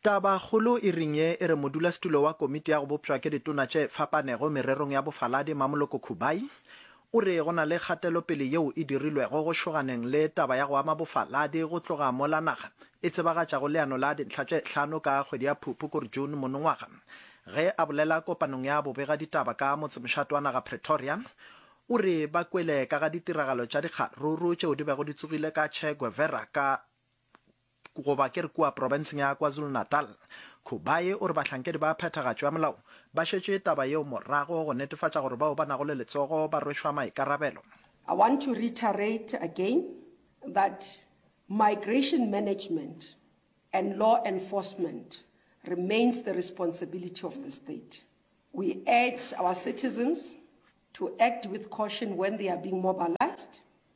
Tabakgolo e ring ye e re modulasetulo wa Komiti ya go Bopšwa ke Ditona tše Fapanego Mererong ya Bofaladi, Mmamoloko Khubai, o re go na le kgatelopele yeo e dirilwego go šoganeng le taba ya go ama bofaladi go tloga mola naga e tsebagatšago leano la dintlha tše hlano ka kgwedi ya Phuphukur, June, monongwaga. Ge a bolela kopanong ya bobegaditaba ka motsemošate wa naga Pretoria, o re ba kwele ka ga ditiragalo tša dikgaruru tšeo di bego di tsogile ka Che Guevera ka goba ke re kua profenseng ya KwaZulu-Natal. Khubayi o re bahlankedi ba phethagatšo ya molao ba šetše taba yeo morago go netefatša gore bao ba nago le letsogo ba rwešwa maikarabelo. I want to reiterate again that migration management and law enforcement remains the responsibility of the state. We urge our citizens to act with caution when they are being mobilised.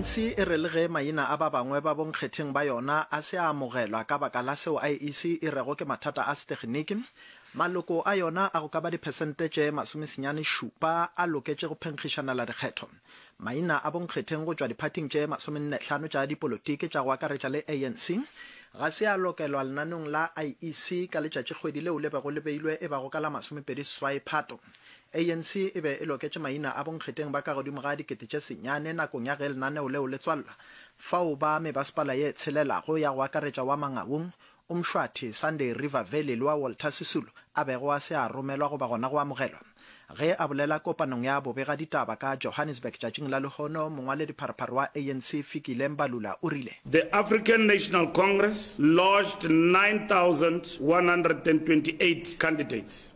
anc e re le ge maina a ba bangwe ba bonkgetheng ba yona a se a amogelwa ka baka la seo iec e rego ke mathata a seteginiki, maloko a yona a go ka ba diphesente tše masomesenyane šupa a loketše go phenkgišanela dikgetho. Maina a bonkgetheng go tšwa diphathing tše masomenne-hlano tša dipolotiki tša go akaretša le ANC ga se a lokelwa lenanong la IEC ka letšatšikgwedi leo le bego le beilwe e bago ka la masomepedi seswai Phato. ANC e be e loketše maina a bonkgetheng ba ka godimo ga dikete tše senyane nakong ya ge lenaneo leo le tswalwa fao ba mebaspala ye tshelelago ya go akaretša wa Mangaung, O Mshwati, Sunday River Valley le wa Walter Sisulu a bego a se a romelwa goba gona go amogelwa. Ge a bolela kopanong ya bobegaditaba ka Johannesburg tšatšing la lehono, mongwaledipharphar wa ANC Fikile Mbalula o rile, The African National Congress lodged 9,128 candidates.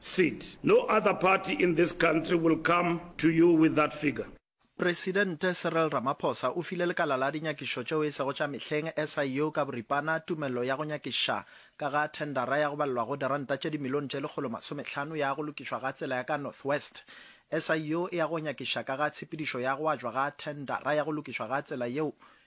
seat. No other party in this country will come to you with that figure. Presidente Cyril Ramaphosa o file lekala la dinyakišo tšeo e sego tša mehleng, SIU, ka boripana tumello ya go nyakiša ka ga thendara ya go balelwa go diranta tše dimilione tše lekgolo masomehlano ya go lokišwa ga tsela ya ka North West. SIU e ya go nyakiša ka ga tshepedišo ya go ajwa ga thendara ya go lokišwa ga tsela yeo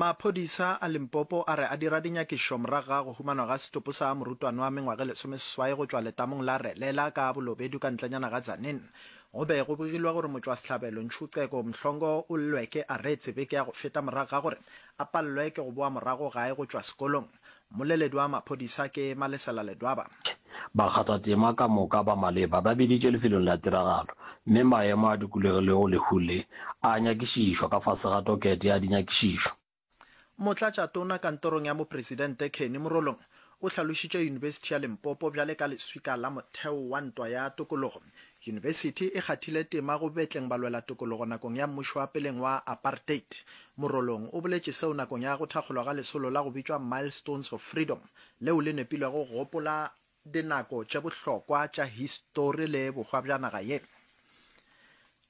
Maphodisa a Limpopo a re a dira dinyakišo morago ga go humanwa ga setopo sa morutwana wa mengwaga e lesomeseswai go tšwa letamong la Relela ka bolobedu ka ntlenyana ga Tzaneen. Go be go bogilwe gore motšwasehlabelo Nchuceko Mhlongo o lletše aretse beke ya go feta morago ga gore a pallwe ke go boa morago gae go tšwa sekolong. Moleledi wa maphodisa ke Malesela Ledwaba. Bakgathatema ka moka ba maleba ba biditšwe lefelong la tiragalo mme maemo a dikulegilego lehu le a nyakišišwa ka fase ga tokete ya dinyakišišo. Motlatšatona kantorong ya Mopresidente Kenny Morolong o hlalošitše Yunibesithi ya Limpopo bjale ka leswika la motheo wa ntwa ya tokologo Yunibesithi e kgathile tema go betleng balwelatokologo nakong ya mmušo wa peleng wa apartheid. Morolong o boletše seo nakong ya go thakgolwa ga lesolo la go bitšwa Milestones of Freedom, leo le nepilwego go gopola dinako tše bohlokwa tša histori le bohwa bja naga ye.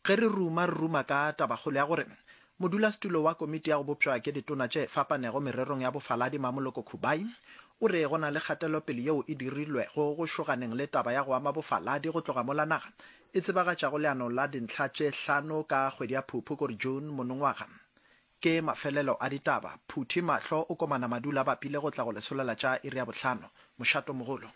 Ge re ruma, re ruma ka tabakgolo ya gore Modulasetulo wa Komiti ya go Bopšwa ke Ditona tše Fapanego Mererong ya Bofaladi Mmamoloko Khubai o re go na le kgatelopele yeo e dirilwego go šoganeng le taba ya go ama bofaladi go tloga mola naga e tsebagatšago leano la dintlha tše hlano ka kgwedi ya Phuphu kore June monongwaga. Ke mafelelo a ditaba. Phuthi mahlo o komana madu la bapile go tla go lesolela tša iri ya bohlano. Mošato mogolo.